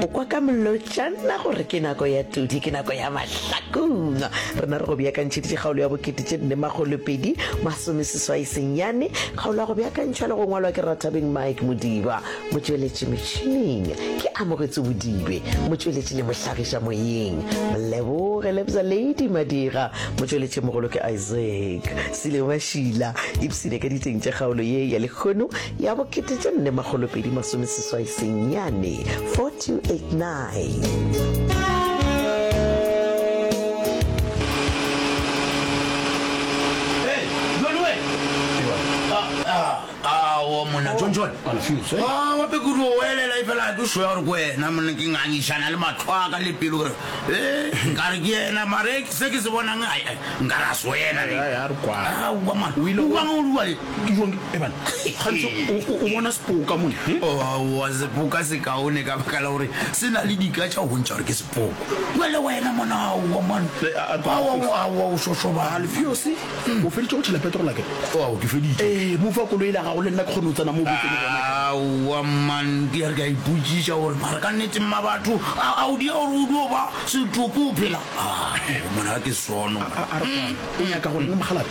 o kwa ka molotšana gore ke nako ya tudi ke nako ya mahlakong rena re go beakantšheditše kgaolo ya bokete tše nne magolopedi masomeseswai senyane kgaolo ya go beakantšhwa le go ngwalwa ke rathabeng mike modiba motšweletši metšhineng ke amogetse bodibe motšweletši le mohlagiša moyeng leboge lebza lady madira motšweletši mogolo ke isaac sile mašila ipsene ka diteng tša kgaolo ye ya lekgono ya bo kete tše nne makgolo pedi masome seswai senyane 4289 monna john john ah, wa pekuru o elela e fela ke soya gore ko wena monna ke ngangišana le matlho a ka le pelo gore e nkare ke ena mare se ke se bonang nkare a se wena le ah, o ile o ruale Ke jwang ke ebana gantsi o bona sepoka mone oa sepoka se kaone ka baka la gore se na le dika tša go bontšha gore ke sepoko mwa le wena mona aowa mane aowa o šošoba alfeose o feditše go tšhela petrol ake oa ke feditše ee mo fa koloi la gago le nna ke kgone go tsena mo aowa man ke ya re ka ipotšiša gore mara ka nnete mma batho a o dia gore o dio ba setoko o phela mona ke sono o nyaka gore mogalabe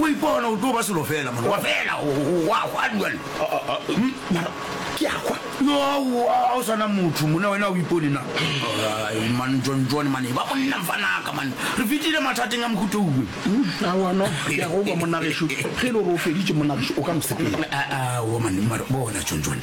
O ipona o tlo ba selo fela mona. Wa fela wa hwa dual. Mara ke a hwa. No a o sana motho mona wena o ipone na. Ai man John John mane ba monna mfanaka mane. Re fitile mathateng a mohuto uwe. A wa no ya go ba monna ge shu. Ge lo ro feditše monna o ka mosepela. A a wo mane mara bona John John.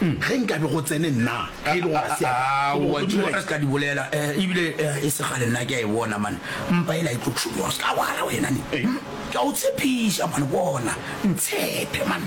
Ge nkabe go tsene nna, ge e le gore ga se ya ka, go bo Modimo a ka se ka di bolela. E bile e se kgale nna ke a e bona, man. Mpa yela e tlo šoma. O se ka lwala wena, ne. Ke a go tshepiša, man. Bona, ntshepe, man.